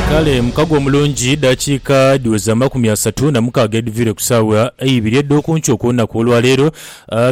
Kale mukago omulungi, dakiika dhiweza amakumi asatu na mukaaga edhiviire ku saagha eibiri edh'oku nkyo okw'olunaku olwa leero,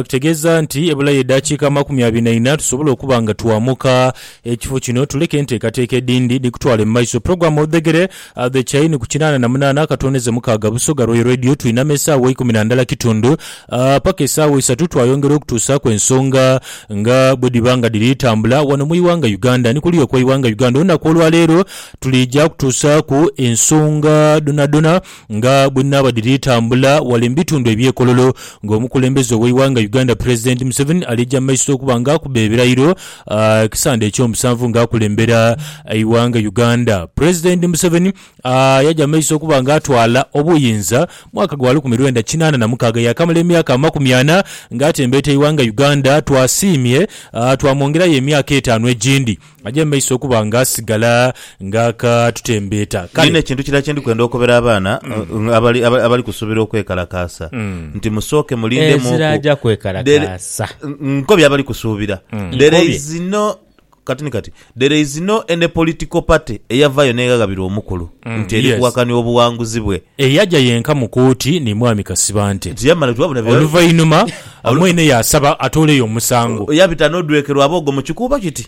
kitegeeza nti ebulayo edakiika amakumi abiri na ina tusobole okuba nga twamuka ekifo kino tuleke enteekateeka edhindi dhikutwale mu maiso. Program odhegere. A The Chain ku kinaana na munaana akatooneze mukaaga Busoga Royal Radio Twinama esaawa ikumi na ndala kitundu a paka esaawa isatu twayongera okutuusaaku ensonga nga bwe dhiba nga dhiri tambula wano mu iwanga Uganda ni kuliya okwa iwanga Uganda olunaku olwa leero tuliija kutuusaaku ensonga dhonadhona nga bwe dhinaaba dhiri tambula wale mu bitundu ebye Kololo nga omukulembeze owe iwanga Uganda Pulezidenti Museveni aliija mu maiso okuba nga akuba ebirayiro Ekisande eky'omusanvu nga akulembera eighanga Uganda, Pulezidenti Museveni yaja mu maiso okuba nga atwala obuyinza mwaka gwa lukumi lwenda kinaana na mukaaga yaakamala emyaka amakumi ana nga atembeeta eighanga Uganda. Twasiimye twamwongerayo emyaka etaanu egindi aje mu maiso okuba nga asigala ng'akaatutembeeta. Ni Kale. n'ekintu kirala kye ndi kwenda okobera abaana eh, abali aba- abali kusubira okwekalakaasa, nti musooke mulindemuuku. Ezira aja kwekalakaasa. There- N- Nkobye abali kusuubira. There Nkobye. is no kati ni kati there is no any political party eyavaayo n'eghaghabirwa omukulu nti eri yes. kuwakania obuwanguzi bwe Eyaja yenka mu kooti ni Mwami Kasibante. nti yamala nti wabula bya- Oluvainuma mwene yaasaba atooleyo omusango. yabita n'odwekerwa aboogo mu kikuubo kiti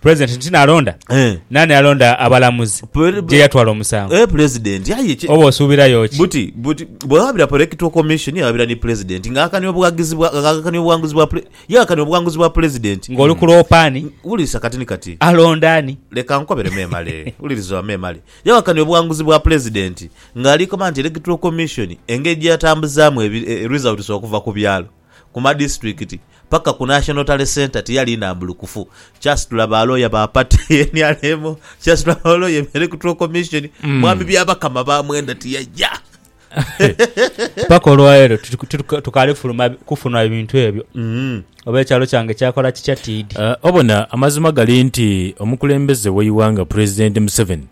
Pulezidenti nti nalonda? Eh. Naani alonda abalamuzi Pul- gye yatwala omusango? Eh, pulezidenti aye ki- Oba osuubirayo ki? buti buti bwewabira political commission yewabira ni pulezidenti nga akakania obuwagizi bwa nga akakania obuwanguzi bwa pule- yakakania obuwanguzi bwa pulezidenti Ng'oli ku loopa ani? wulirisa kati ni kati Alonda ani? leka nkobere memale wuliriza oba memale yawakanya obuwanguzi bwa pulezidenti ng'alikoba nti electoral commission engeri gyeyatambuzaamu ebi- e- results okuva ku byalo ku madisiturikiti paka ku National Tally Centre tiyali nambulukufu, kyasitula ba looya ba pati ye nrm, kyasitula ba looya ebe Electoral Commission, mm. mwami Byabakama ba mwenda tiyaja. paka olwaleero tukaali kufunwa ebintu ebyo mm. oba ekyalo kyange kyakola kikya tiidi uh, obona amazima gali nti omukulembeze weiwanga pulezidenti museveni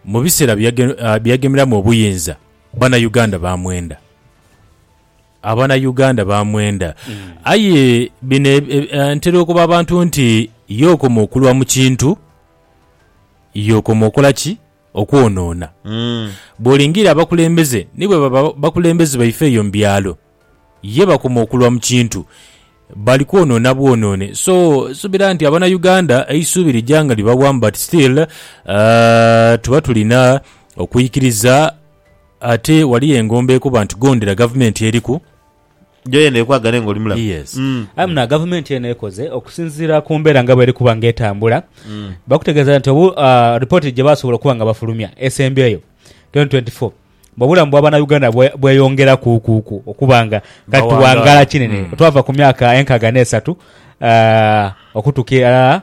mu biseera byeyagemeramu uh, obuyinza bana uganda bamwenda Abana Uganda bamwenda. Aye bino ntera okuba abantu nti ye okoma okulwa mu kintu, ye okoma okola ki? Okwonoona. Bw'olingiira abakulembeze ni bwe baba bakulembeze baife eyo mu byalo, ye bakoma okulwa mu kintu, bali kwonoona bwonoone. So, nsubira nti abana Uganda eisuubi lija nga libawamu but still tuba tulina okwikiriza. Ate waliyo engombo ekuba nti gondera gavumenti eriku. Yo yene ekwagane nga oli mulamu. Yes. Aye muno gavumenti eno ekoze okusinziira ku mbeera nga bweri kuba nga etambula. Bakutegeeza nti obu ripooti gye baasobola okuba nga bafulumya esembyeyo, twenty twenty four, mbu obulamu bwa Bannayuganda bwe bweyongerakuukuuku okuba nga kati tuwangaala kinene. Twava ku myaka enkaaga n'esatu okutuuka irala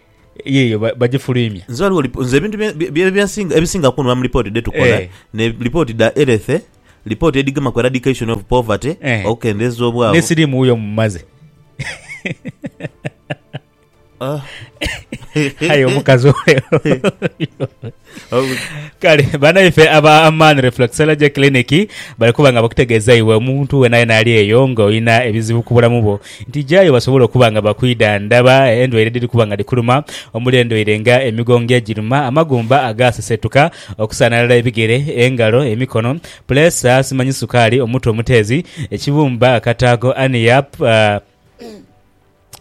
Yiyo, bagifuluimya. Nze ghaligho lip, nze ebintu bye, bye, bye nsinga, ebisinga okunhuma mu lipooti dhetukola, Eh. ne lipooti dha erethe, lipooti edhigema ku eradication of poverty, Eh. okukendeeza obwavu. Ne siriimu wuyo mumaze. Ah. Aye omukazi oyo. Kale banaife aba Aman Reflexology Clinic bali kuba nga bakutegeeza iwe omuntu weenayeena ali eyo ng'olina ebizibu ku bulamu bwo nti jayo basobole okuba nga bakwidhandhaba endwaire edhiri kuba nga dhikuluma omuli endwaire nga emigongo egiruma, amagumba agaaseseetuka, okusaanalala ebigere, engalo, emikono, puleesa, simanyi sukaali, omutwe omuteezi, ekibumba, akataago, hernia,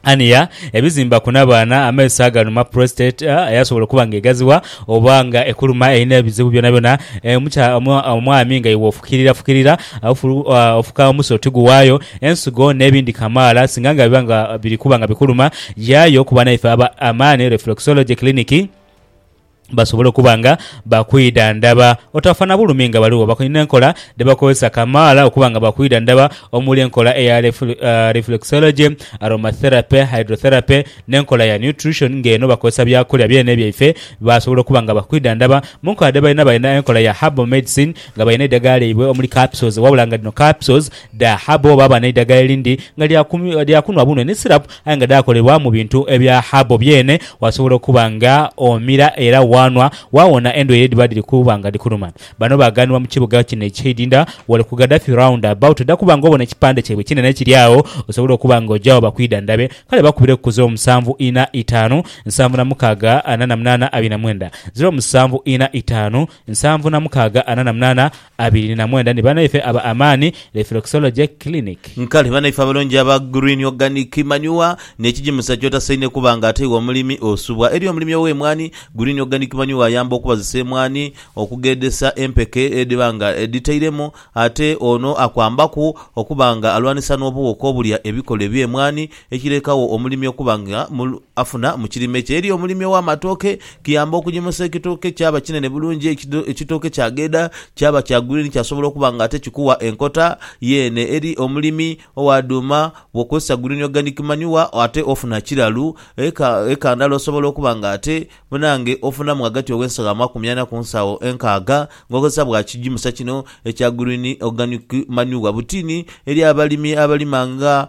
Ania ebizimba ku nabaana amaiso aganuma prostate eyasobola okuba nga egaziwa oba nga ekuluma erina ebizibu byonabyona omwami nga iwe ofukirira fukirira ofuka omusa otiguwayo ensigo nebindi kamaala singa nga biba nga biri kuba nga bikuluma yayo kuba naife aba Amani reflexology clinic. basobole okuba nga bakwidhandhaba otafa na bulumi nga baligho. Bakonie n'enkola dhe bakozesa kamaala okuba nga bakwidhandhaba omuli enkola eya reflexology, aromatherapy, hydrotherapy n'enkola ya nutrition ng'eno bakozesa byakulya byene byaife basobola okuba nga bakwidhandhaba. Mu nkola dhe balina, balina enkola ya herbal medicine nga balina eidhagala lyaibwe omuli capsules wabula nga dhino capsules dha herbal. Baaba n'eidhagala erindi nga lya kunhwa bunhwe ni syrup Aye nga dhaakolebwa mu bintu ebya habo byene, waasobola okuba nga omira era waanhwa, waawona endwaire edhiba dhiri kuba nga dhikuluma. Bano baagaanibwa mu kibuga kino eky'eidinda wale ku Gaddafi Round About. Oja kuba nga obona ekipande kyaibwe ekinene kiri agho, osobole okuba nga oja agho bakwidhandhabe. Kale bakubireku ku ziro musanvu ina itaanu nsanvu na mukaaga ana na munaana abiri na mwenda, ziro musanvu ina itaanu nsanvu na mukaaga ana na munaana Abiri na mwenda ni banaife aba Amani Reflexology Clinic. Nkale banaife abalungi aba Green Organic Manure n'ekigimusa ky'otasaine kuba nga ate iwe omulimi osubwa. Eri omulimi ow'emwaani, Green Organic Manure ayamba okubazisa emwaani okugheedhesa empeke edhiba nga edhitairemu ate ono akwambaku okuba nga alwanisa n'obuwuka obulya ebikolo eby'emwaani Ekireekagho omulimi okuba nga afuna mu kirime kye. Eri omulimi ow'amatooke, kiyamba okugimusa ekitooke kyaba kinene bulungi, ekitooke kyagheeda kyaba kya green kyasobola okuba nga ate kikuwa enkota yeene. Eri omulimi owa dhuuma, bw'okozesa green organic manure ate ofuna kiralu. Eka, eka ndala osobola okuba nga ate bnange ofunamu ghagati ow'ensawo amakumi ana ku nsawo enkaaga ng'okozesa bwa kigimusa kino ekya green organic manure. Butiini eri abalimi abalima nga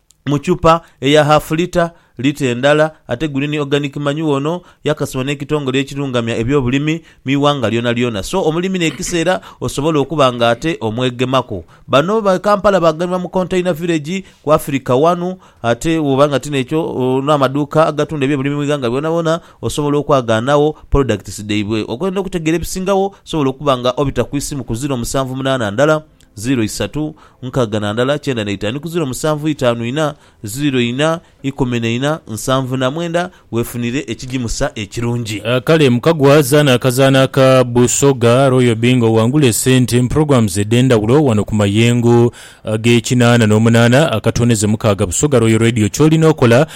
mu chupa eya haafu lita, lita endala ate guli ni organic manure ono yakasibwa n'ekitongole ekirungamya eby'obulimi mu ighanga lyonalyona so omulimi n'ekiseera osobola okuba nga ate omwegemaku. Bano ba Kampala baganibwa mu Container Village ku Afirika wanu ate bw'oba nga ti n'ekyo n'amaduuka agatunda eby'obulimi mu ighanga byonabyona osobola okwagaanagho products dhaibwe. Okwenda okutegeera ebisingawo osobola okuba nga obita ku isimu ku ziro musanvu munaana ndala Ziiro isatu, nkaga na ndala, kyenda na itanu ku ziiro musanvu itanu ina, ziiro ina, ikumi na ina, nsanvu na mwenda, weefunire ekigimusa ekirungi. Kale mukagwa zaana akazaana aka Busoga Royal Bingo wangule sente mu programs edhendhawulo wano ku mayengo ag'ekinaana n'omunaana akatondeze mukaaga Busoga Royal Radio kyolina okola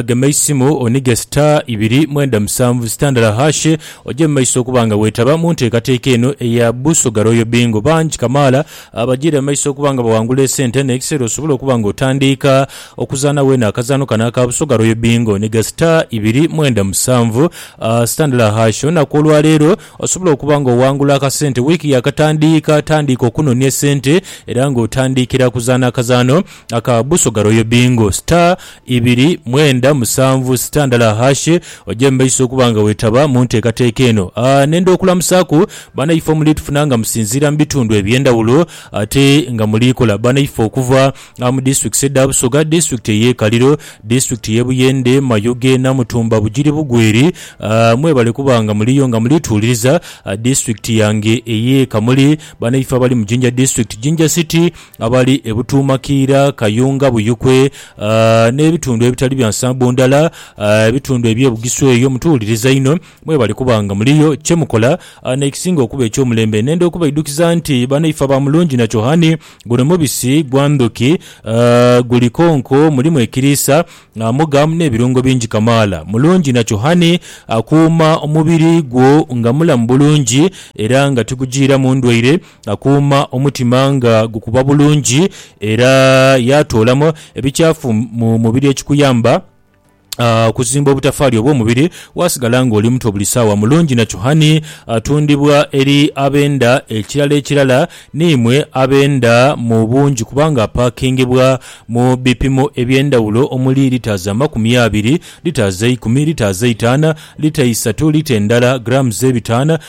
Gema eisimu onige star ibiri mwenda musanvu star ndala hash oje mu maiso okuba nga weetaba mu nteekateeka eno eya Busoga Royal Bingo. Bangi kamaala bagiira mu maiso okuba nga bawangula esente n'ekiseera osobole okuba nga otandiika okuzaana weena akazaano kano aka Busoga Royal Bingo. Niga star ibiri mwenda musanvu star ndala hash olunaku olwa leero osobole okuba nga owangula akasente. Wiiki yaakatandiika, tandiika okunonia sente era ng'otandiikira kuzaana akazaano aka buso ga Royal Bingo, star ibiri mwenda musanvu star ndala hash oje mumaiso okuba nga wetaba munteekateeka eno. Nenda okulamusaaku banaifo muli tufuna nga musinziira mubitundu ebyendawulo ate nga muli kola banaifo okuva mu districts edha Busoga, district eye Kaliro, district ye Buyende, Mayuge, Namutumba, Bugiri Bugweri mwebale kuba nga muliyo nga muli tuwuliriza. District yange eye Kamuli, banaifo abali mu Jinja district, Jinja city. abali e Butuumakiira, Kayunga, Buyukwe n'ebitundu ebitali bya nsambo ndala, ebitundu eby'e Bugisu eyo mutuwuliriza inho. Mwebale kuba nga muliyo. Kye mukola n'ekisinga okuba eky'omulembe nenda okubaidukiza nti banaife aba Mulunginakyohani, guno mubisi gwa ndhuki, guli konko, mulimu ekiriisa, mugamu n'ebirungo bingi kamaala. Mulunginakyohani akuuma omubiri gwo nga mulamu bulungi era nga tigujiiramu ndwaire. Akuuma omutima nga gukuba bulungi era yaatoolamu ebikyafu mu mubiri ekikuyamba okuzimba obutafaali obw'omubiri waasigala ng'oli muto buli saawa. Mulungi na Chuhani atundibwa eri ab'enda ekirala ekirala n'imwe ab'enda mu bungi kubanga apaakingibwa mu bipimo eby'endhawulo omuli litres amakumi abiri, litres eikumi, litres eitaana, lita isatu, lita endala, grams ebitaana,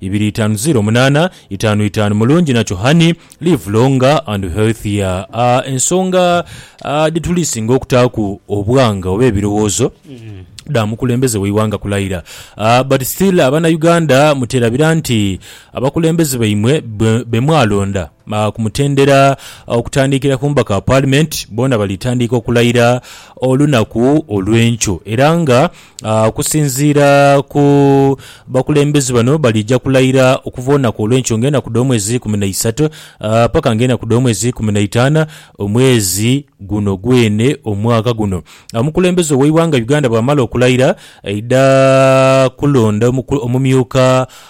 ibiri itaanu ziro munaana itaanu itaanu Mulungi nakyo Honey, live longer and healthier a Ensonga a dhituli singa okutaaku obwanga oba ebirowoozo dha mukulembeze w'eighanga kulaira a But still abana Uganda muterabira nti abakulembeze baimwe be mwalonda a ku mutendera okutandiikira ku mubaka wa Parliament boona bali tandiika okulaira olunaku olw'enkyo era nga Okusinziira ku bakulembeze bano, baliija kulayira okuva olunaku olw'enkyo ng'enaku dh'omwezi eikumi na isato paka ng'enaku dh'omwezi eikumi na itaana omwezi guno gwene omwaka guno. Omukulembeze ow'eighanga Uganda bw'amala okulayira, aidha kulonda omumyuka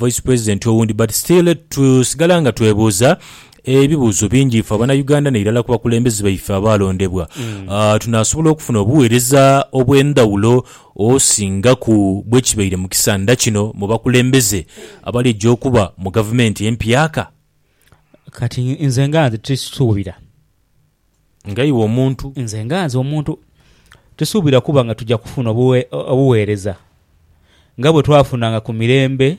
Vice President owundi but still tusigala nga twebuuza ebibuuzo bingi ife abanauganda nairala kubakulembeze baife abaalondebwa tunaasobola okufuna obuweereza obwendhawulo osingaku bwekibaire mukisandha kino mubakulembeze abalija okuba mugavumenti empyaka? Kati nze nga nze tisuubira. nga iwe omuntu. Nze nga nze omuntu. Tusuubira kuba nga tuja kufuna obugheereza nga bwe twafunanga ku mirembe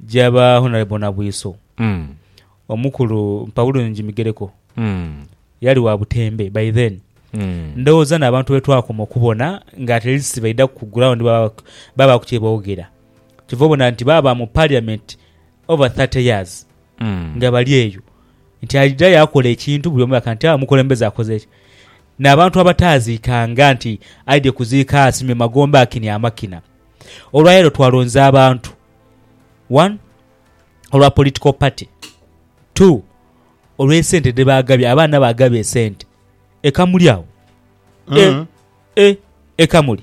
gya ba Honourable Nabwiso. Omukulu Mpabulungi Migereko yali wa butembe by then. Ndhoghoza n'abantu be twakoma okubona nga at least baidha ku ground baabaaku kye boogera. Kyova obona nti baaba mu Parliament over thirty years. nga bali eyo, nti alidha yaakola ekintu buli omu yakola nti, Aa, mukulembeze akoze ki? N'abantu abataaziikanga nti aidhie kuziika asimye magombe akinhe amakina. Olwa leero twalonza abantu, one, olwa political party, two, olw'esente dhe baagabye, abaana baagabye esente. E Kamuli agho? E, e, e Kamuli?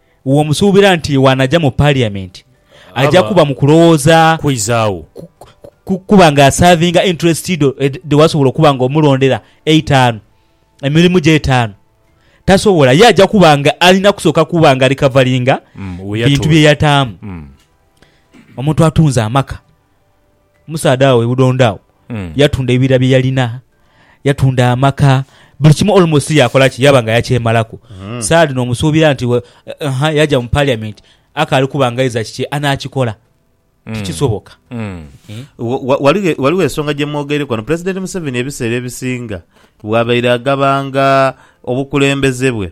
w'omusuubira nti bw'anaja mu Parliament aja kuba mu kulowooza kwizaawo kuba nga asaavinga interest dho dhe wasobola okuba nga omulondera eitaanu, emirimu gye etaanu, tasobola. Ye aja kuba nga alina kusooka kuba nga recoveringa bintu bye yataamu. Omuntu atunze amaka. Omusaadha agho e Budondo agho yatunda ebibira bye yalina, yatunda amaka, buli kimu almost yaakola ki? Yaaba nga yakyemalaku. Saadi n'omusuubira nti we, ha, yaja mu Parliament, akaali kuba nga aidha kiki anaakikola. Tikisoboka. Eh. Wa- wa- Ghaligho e- ghaligho ensonga gye mwogeireku ghano. Pulezidenti Museveni ebiseera ebisinga bw'abaire agabanga obukulembeze bwe,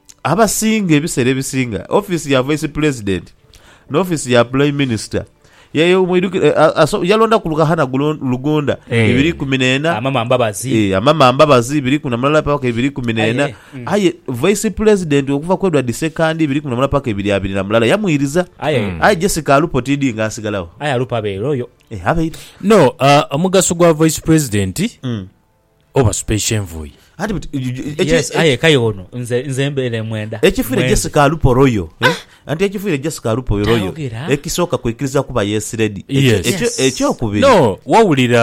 Abasinga ebiseera ebisinga ofiisi ya Vaisi Pulezidenti n'ofiisi ya Pulaimi Minisita yayo mwidhukiro yalondaku Lukahana Lugunda ibiri ikumi n'ena, Amama Mbabazi, Amama Mbabazi ibiri ikumi na mulala paka ibiri ikumi n'ena aye Vaisi Pulezidenti okuva ku Edward Ssekandi ibiri ikumi na mulala paka ibiri abiri na mulala yamwiriza aye Jessica Alupo TD nga asigalagho. Aye Alupo abeera oyo? Abeera. No, omugaso gwa Vaisi Pulezidenti. Obasupeisha envui. Anti but Yes, aye kaye ono nze nze mbeera e mwenda. Ekifiire mwenzi. Jessica Aluporoyo eh? Anti ekifiire Jessica Aluporoyo Tayogera. ekisooka kwikiriza kuba yeesiredi. Ekyo- Yes. ekyo- Yes. Ekyokubiri No, wawulira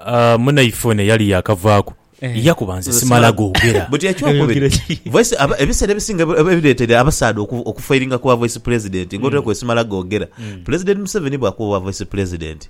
ah, munaife ono eyali yakavaaku Eh. yakuba nze simala googera. But ekyokubiri Ayogera ki? voice aba- ebiseera ebisinga ebi- ebi- ebireetera abasaadha oku- okufairinga ku bwa voice president nga otera kwesimala googera. Pulezidenti Museveni bwakuba obwa voice president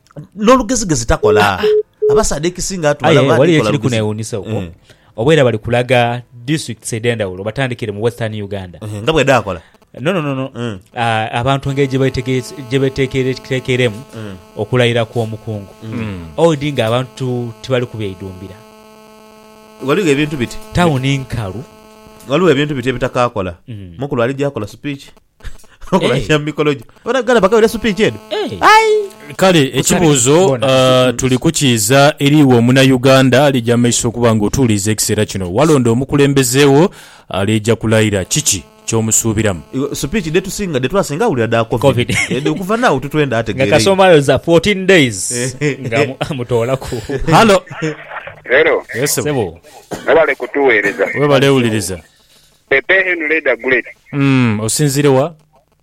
N'olugezigezi takola. Abasaadha ekisinga atu Aye balaba waliyo adikola ekiri lugezi. kunewuunisa uko Eh, oba era bali kulaga districts edh'endhawulo batandikire mu western uganda eh, nga bwedaakola. no no no no Mm. Ah, abantu engeri gye betegere- gye betekeretekeremu Mm. okulayira kw'omukungu owedi nga abantu tibali kubyeidhumbira Waliwo ebintu biti. tawuni nkalu Waliwo ebintu biti ebitakaakola. Mm. Mukulu aligya akola speech. okulabira mu mikolo gyo bona gala bagabira supiki eno Eh. Kale ekibuuzo Bona. ah, tuli kukiiza eri iwe omunayuganda alija amaiso okuba nga otuwuliriza ekiseera kino. Walonda omukulembeze wo alija kulayira. Kiki kyomusuubiramu? Iwe, supiki dhetusinga dhetwasinga awulira dha covid, Covid. Eh, okuva naawo tutwenda nga ategeere kasoma ayoza 14 days nga amu- amutoolaku Halo. Hello. Yes, sebo. Sebo. Mwebale kutuweereza. Webale wuliriza. Pepe Henry da Guleti. Umm osinzire wa?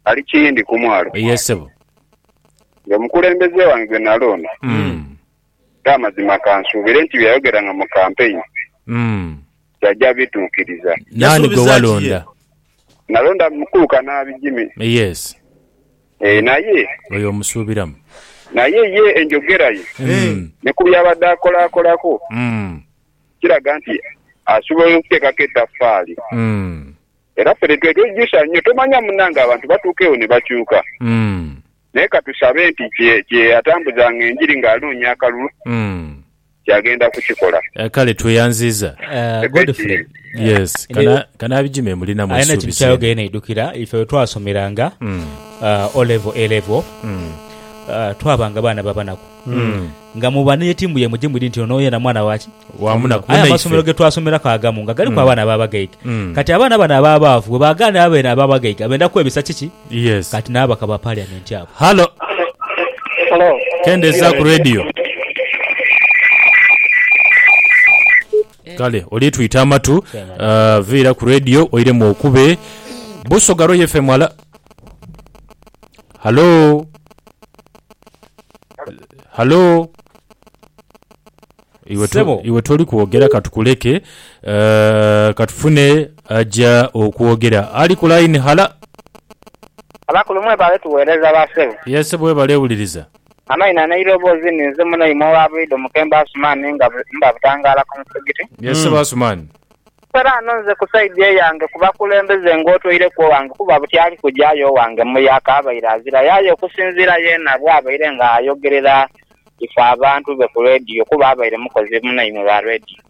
Ali Kiyindi ku mwalo. Yes sebo. Nga omukulembeze wange gwe nalonda. Umm. Era amazima kansuubire nti byeyayogeranga mu kampeyini. Umm. Kyaja bituukiriza. Naani gwe walonda? Nalonda mukulu Kanaabi Jimmy. Yes. Eeh naye. Oyo omusuubiramu. Naye ye enjogera ye. Umm. Ne ku byabadde akolakolako. Umm. kiraga nti asobola okuteekaku etafaali. Era ffe nitwekeijusa nnyo. Tomanya munange abantu batuukewo ni bakyuka. Naye ka tusabe nti kye yatambuzanga enjiri ng'anoonya akalulu nti agenda kukikola. Kale tweyanziiza. Godfrey alina ekintu ky'ayogeire naidhukira ife bwe twasomeranga O-Level, A-Level, twabanga baana ba banaku. nga muba ni yetimbuya muje mwidini nti ono yena mwana waki? Wa munaku. Aye amasomero ge twasomeraku agamu nga galiku abaana ababagaiga. Kati abaana bano ababaavu bwe bagaana abo bene ababagaiga benda kwebisa kiki? Yes. Kati n'ababaka ba Parliament abo. Halo. Halo. Kendezaaku radio. Kale oli twita amatu, ah, viira ku radio oiremu okube. Busoga Roy FM, halo. Halo. Halo. Sebo. Iwe toli kwogera katukuleke eh, katufune aja okwogera ali ku line. Hala. Abakulu mwebale tuwereza ba sebo. Yes sebo webale wuliriza. Amaina neirobozi ni nze muno imwe owa bulido mukembo Asumani nga mba butangala ku musigiti. Yes sebo Asumani. Kale ano nze ku saidi eyange ku bakulembeze ng'otweireku owange kuba buti ali kuja aye owange mu yaaka abaire azirayo aye okusinziira yeena bw'abaire nga ayogerera ife abantu be ku leediyo kuba abaire mukozi munaimwe wa leediyo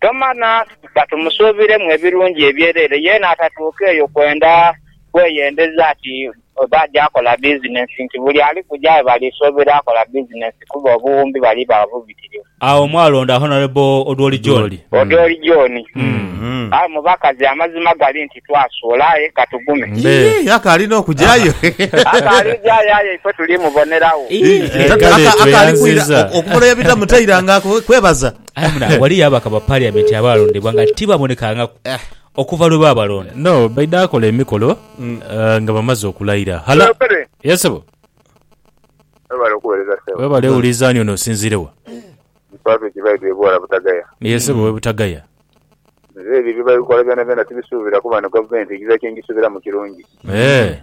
tomana bba tumusuubiremu ebirungi ebyereere yeena atatuuka eyo kwenda kweyendeza ati oba aja akola bizinensi nti buli ali kuja aye bali suubira akola bizinensi kuba obuwumbi bali bagha bubitirivu. Agho mwalonda Honourable Odwori John. Odwori John, Aye mubakazi amazima gali nti twasuula aye katugume. Yii akaali n'okujayo. Akaali kujayo aye ife tuli mubonera gho. Akaali kwira okubola ebita mutaira nga kwebaza. Aye muna waliyo ababaka ba parliament abaalondebwa nga tibabonekangaku. Okuva lwe baabalonda. No, baidha kola emikolo nga bamaze okulaira. Hala. Yes, sebo. Webale okuwereza ssebo. Webale wuliza ani ono osinziire wa? Ndi Patrick Baidhwa e Bwala Butagaya. Ye sebo we Butagaya. Nze ebyo bye bali kola byonabyona tibisuubira kuba eno gavumenti njiza kye njisuubiramu kirungi. Eeh.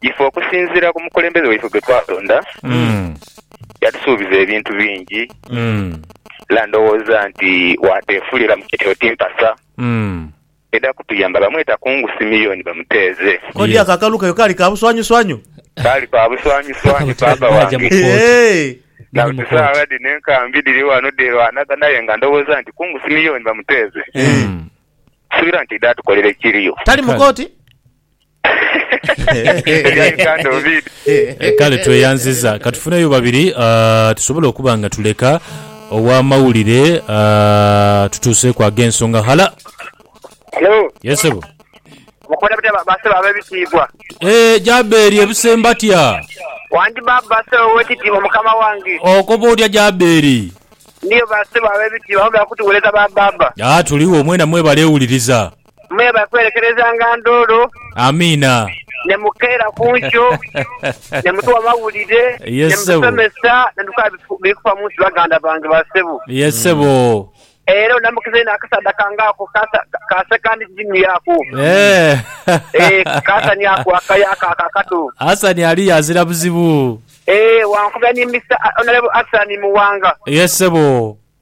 Ife okusinziira ku mukulembeze waife gwe twalonda, yatusuubiza ebintu bingi era ndowooza nti waateefulira mu kiti oti mpasa edha kutuyamba. Bamweta Kungu Simeon Bamuteeze. Kodi ako akalu kayo kaali ka buswanyuswanyu? Kaali ka buswanyuswanyu paapa wange. Eehee. Na buli saagha dhino enkambi dhiri ghano dheerwanagana aye nga ndowooza nti Kungu Simeon Bamuteeze, nsubira nti idho atukolera ekiriyo. Tali mu kooti? Ebya Uganda ovid. Kale tweyanziza. Katufuneyo babiri ah, tusobole okuba nga tuleka ow'amawulire ah, tutuuseeku ag'ensonga. Hala. Hello. Yes, sebo. Mukola mutya ba- basebo ab'ebitiibwa? Eh, Jabeeri ebuse mbatya. Wandi baba basebo ow'ekitiibwa mukama wange. Okoba otya Jabeeri? Ndiyo basebo ab'ebitiibwa, mwebale kutuwereza ba baba. Ah, tuliwo mwena mwebale wuliriza. Mwe ba kwerekerezanga ndhoolo. Amiina. Ne mukeera ku nkyo, ne mutuwa amawulire, ne mutusomesa, ne tukola biri kufa mu nsi baganda bange ba ssebo. Ye ssebo. Era onamukize inho akasaadha kange ako ka Second Jimmy ako. Eeh ka Hassan ako akali ako akato. Hassan aliyo azira buzibu. Eeh wankubira ni Mister Honourable Hassan Muwanga. Ye ssebo.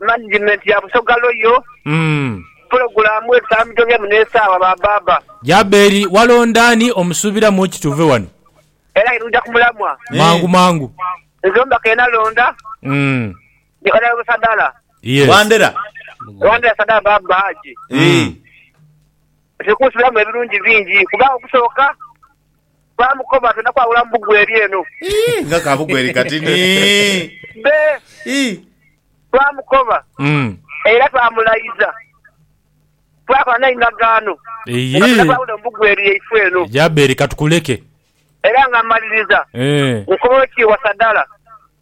Management ya Busoga Royal pulogulaamu ebisambijo bye muno esaawa ba baaba. Jaberi, walonda ani omusuubira mu ki tuve wano? Era aye nuja ku mulamwa. Mangu mangu. Nze omubaka eyenalonda ni Honourable Sadala. Wandera. Wandera Sadala Baaba Haji. Tuli kunsubiramu ebirungi bingi kubanga okusooka. Baamukoba ati, Nakwawula mu bugwe eri eno. Ii, nga ka bugwe eri kati ni. Be, Ii. twamukoba Mm. era twamulaiza, twakola naye endagaano, nga Ii. tinakwawula mu bugwe eri yaifwe eno. Jaberi, ka tukuleke. Era nga mmaliriza, Eh. nkoba ow'ekitiibwa Sadala,